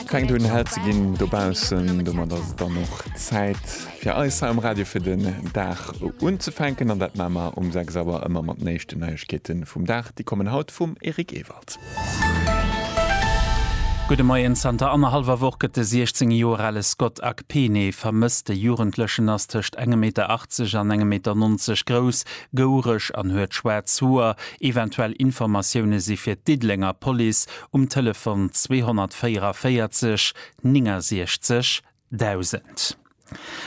Fänkt un hell ze ginn dobaussen, domat ass et dann och Zäit fir eis hei am Radio fir den Dag unzefänken an dat maache mer um 6 Auer ëmmer mat den éischten Neiegkeete vum Dag. Déi kommen haut vum Eric Ewald. Gudde Moien, Zanter annerhallwer Woch gëtt de 16 Joer ale Scott Akpene vermësst. De Jugendlechen ass tëscht engem Meter 80 an engem Meter 90 grouss, gouereg an huet schwaarz Hoer. Eventuell Informatioune si fir d'Diddelenger Police um Telefon 244 69 1000.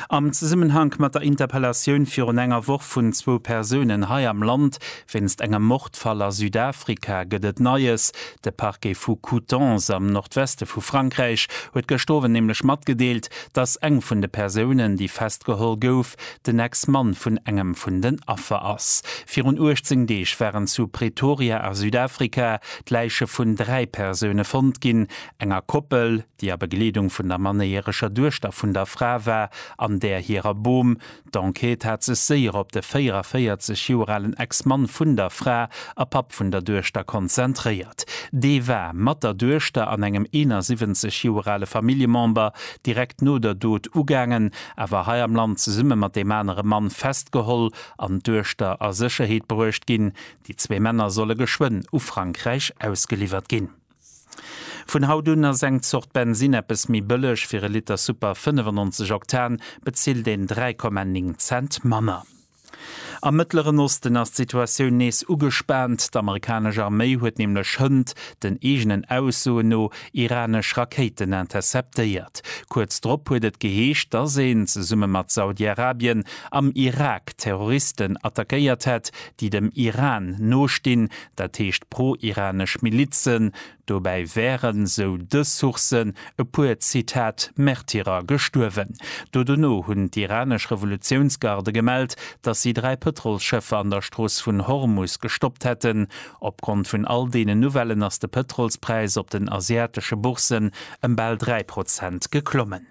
Am Zesummenhank mat der Interpellatioun virun enger Woch vun zwou Persounen hei am Land wéinst engem Mordfall a Südafrika gëtt et Neies. De Parquet vu Coutances am Nordweste vu Frankräich huet gëscht Owend nämlech matgedeelt, datt eng vun de Persounen, déi festgeholl gouf, den Ex-Mann vun engem vun den Affer ass. Virun 18 Deeg waren zu Pretoria a Südafrika d'Läiche vun dräi Persoune fonnt ginn, enger Koppel, déi a Begleedung vun der mannéierescher Duechter vun der Fra war, an där hirer Bom. D'Enquête hat sech séier op de 44 Joer alen Ex-Mann vun der Fra a Papp vun der Duechter konzentréiert. Dee war mat der Duechter an engem 71 Joer ale Familljemember direkt no der Dot ugaangen, awer hei am Land zesumme mat deem anere Mann festgeholl an d'Duechter a Sécherheet bruecht ginn, Déi zwee Männer solle geschwënn u Frankräich ausgeliwwert ginn. Vun haut un ass eng Zort Bensinn eppes méi bëlleg, fir e Liter Super 95 Oktan bezilt een 3,9 Cent manner. Am Mëttleren Osten ass d'Situatioun nees ugespaant. D'Amerikanesch Arméi huet nämlech hënt den eegenen Aussoen no iranesch Rakéiten interceptéiert. Kuerz drop huet et geheescht, dass een, zesumme mat Saudi-Arabien, am Irak Terroristen attackéiert hätt, déi dem Iran nostinn, dat heescht pro-iranesch Milizen. Dobäi wären, esou dës Sourcen, e puer, Zitat, Märtyrer gestuerwen. Do dono hunn d'iranesch Revolutiounsgarde gemellt, datt si dräi Pëtrolsschëffer an der Strooss vun Hormus gestoppt hätten. Opgrond vun all deenen Nouvellen ass de Pëtrolspräis op den asiatesche Bourssen ëm bal dräi Prozent geklommen.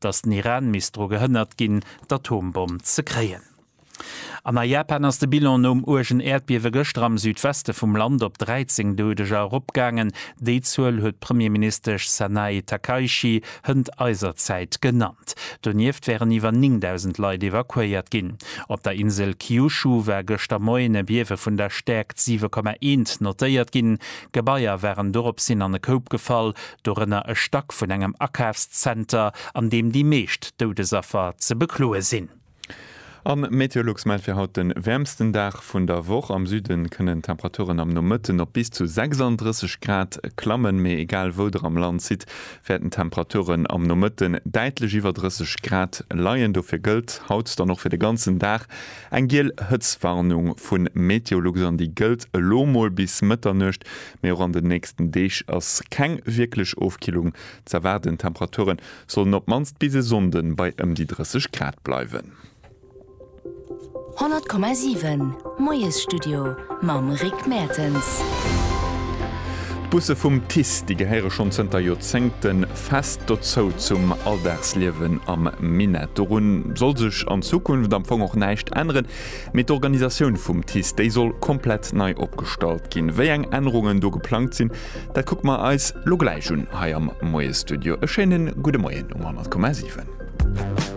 datt den Iran misst dru gehënnert ginn, d'Atombomm ze kréien. An a Japan ass de Bilan nom uergen Äerdbiewe gëschter am Südweste vum Land op 13 Doudeger eropgaangen. Déi Zuel huet d'Premierministesch Sanae Takaichi hënt eiser Zäit genannt. Donieft wären iwwer 9.000 Leit evakuéiert ginn. Op der Insel Kyushu war gëschter Moien e Biewe vun der Stäerkt 7,1 notéiert ginn. Gebaier waren doropshin an e Koup gefall, dorënner e Stack vun engem Akafszenter, an deem déi meescht Doudesaffer ze bekloe sinn. A Meteolux mellt fir haut de wäermsten Dag vun der Woch. Am Süde kënnen d'Temperaturen am Nomëtten op bis zu 36 Grad klammen, mee egal wou der am Land sidd, wäerten d'Temperaturen am Nomëtten däitlech iwwer 30 Grad leien. Dofir gëllt haut dann och fir de ganzen Dag eng giel Hëtztwarnung vu Meteolux an déi gëllt elo mol bis Mëtternuecht. Mee och an den nächsten Deeg ass keng wierklech Ofkillung ze erwaarden, d'Temperature sollen op d'mannst bis e Sonnde bei ëm déi 30 Grad bleiwen. 100,7 Moiesstudio mam Rick Mertens. D'Busse vum TICE, déi gehéiere schonn zënter Joerzéngte fest dozou, zum Alldagsliewen am Minett. Dorun soll sech an Zukunft am Fong och näischt änneren. Mee d'Organisatioun vum TICE, déi soll komplett nei opgestallt ginn. Wéi eng Ännerungen do geplangt sinn, dat kucke mer eis lo gläich un hei am Moie-Studio. E schéinen gudde Moien um 100,7.